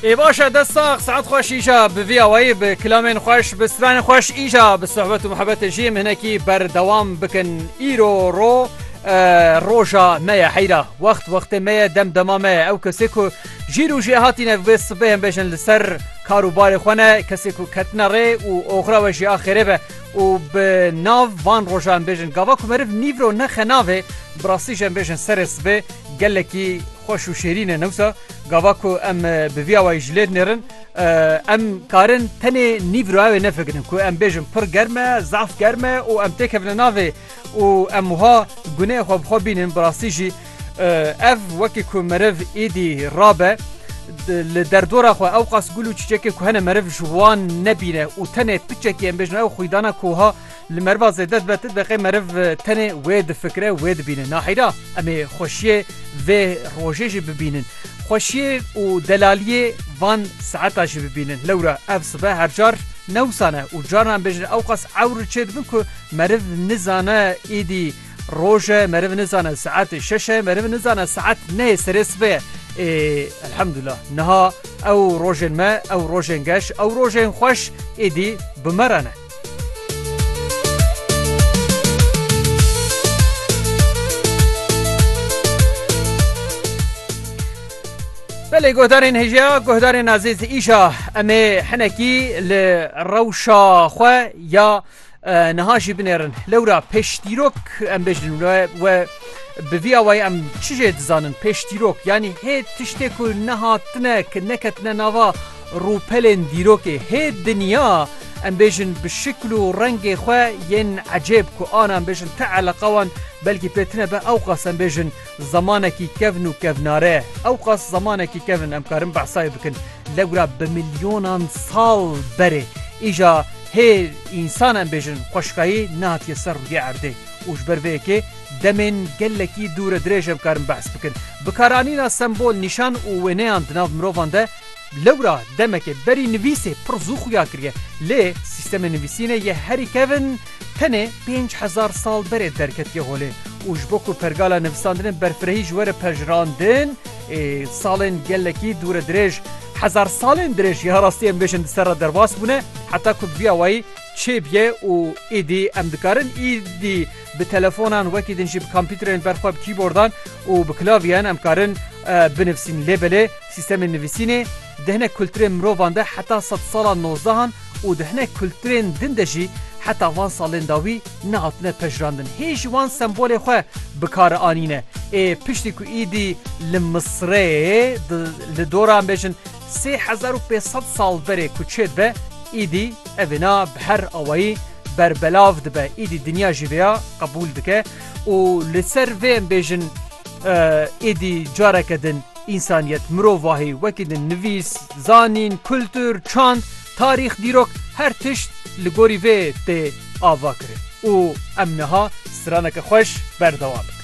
ê baş e dest sax saet xweş îja bi vî awayî bi kilamên xweş bi stranên xweş îja bi sohbet û muhebetê jî em hinekî berdewam bikin îro ro roja me ye heyra wext wextê me ye dem dema me ye ew kesê ku jî rû jê hatîne vê sibê em bêjin li ser karûbarê xwe ne kesê ku ketina rê û oxira we jî axêrê be û bi nav van roja em bêjin gava ku meriv nîvro nexe navê bi rastî jî em bêjin serê sibê gelekî Xweş û şêrîn e newsa gava ku em bi vî awayî ji lê dinêrin em karin tenê nîvro ew ê nefikirin ku em bêjin pir germ e, zaf germ e û em têkevine navê û em wiha guneyê xwe bi xwe bînin bi rastî jî ev wekî ku meriv êdî rabe li derdora xwe ewqas gul û çîçekê ku hene meriv ji wan nebîne û tenê piçekî em bêjin ew xwîdana ku wiha Li meriva zêde dibe ti dibe qey meriv tenê wê difikire wê dibîne. Naheyra em ê xweşiyê vê rojê jî bibînin. Xweşiyê û delaliyê van saeta jî bibînin. Lewra ev sibe her car ne wisa ne û carna em bêjin ewqas ewr çê dibin ku meriv nizane îdî roj e, meriv nizane saetê şeş e, meriv nizane saet neyê serê sibe ye. Ê elhemdullah niha ew rojên me, ew rojên geş, ew rojên xweş êdî bi me re ne. Belê guhdarên hêja guhdarên azêz îşa em ê hinekî li rewşa xwe ya niha jî binêrin lewra pêşdîrok em bêjin we bi vî awayî em çi jê dizanin pêşdîrok yanî hê tiştê ku nehatine ki neketine nava Rûpelên dîrokê hê dinya em bêjin bi şikl û rengê xwe yên ecêb ku ana em bêjin ti eleqa wan belkî pê tine be ewqas em bêjin zemanekî kevn û kevnare ewqas zemanekî kevn em karin behsa wê bikin lewra bi milyonan sal berê îja hê însan em bêjin xweşikayî nehatiye ser rûyê erdê û ji ber vê yekê demên gelekî dûre dirêj em karin behs bikin bikaranîna sembol nîşan û wêneyan di nav mirovan de Lewra demekê berî nivîsê pir zû xuya kiriye lê sîstemê nivîsînê yê herî kevn tenê pênc hezar sal berê derketiye holê û ji bo ku pergala nivîsandinê berfirehî ji we re pejirandin ê salên gelekî dûredirêj hezar salên dirêj ya rastî em bêjin di ser re derbas bûne heta ku bi vî awayî çêbiye û îdî em dikarin îdî bi telefonan wekî din jî bi kompîterên ber xwe bi kîbordan û bi klavyeyan em karin binivîsîn lê belê Sîstemên nivîsînê di hinek kulturên mirovan de heta sed sala nozdehan û di hinek kulturên din de jî heta van salên dawî nehatine pejirandin. Hê ji wan sembolê xwe bi kar anîne. Ê piştî ku îdî li Misireyê di li dora bêjin sê hezar û pênc sed sal berê ku çê dibe, îdî evêna bi her awayî berbelav dibe. Îdî dinya jî vêya qebûl dike û li ser vê em bêjin îdî careke din. Însaniyet, mirovahî, wekî din nivîs, zanîn, kultur, çand, tarîx, dîrok her tişt li gorî vê tê avakirin û em niha straneke xweş berdewam dikin.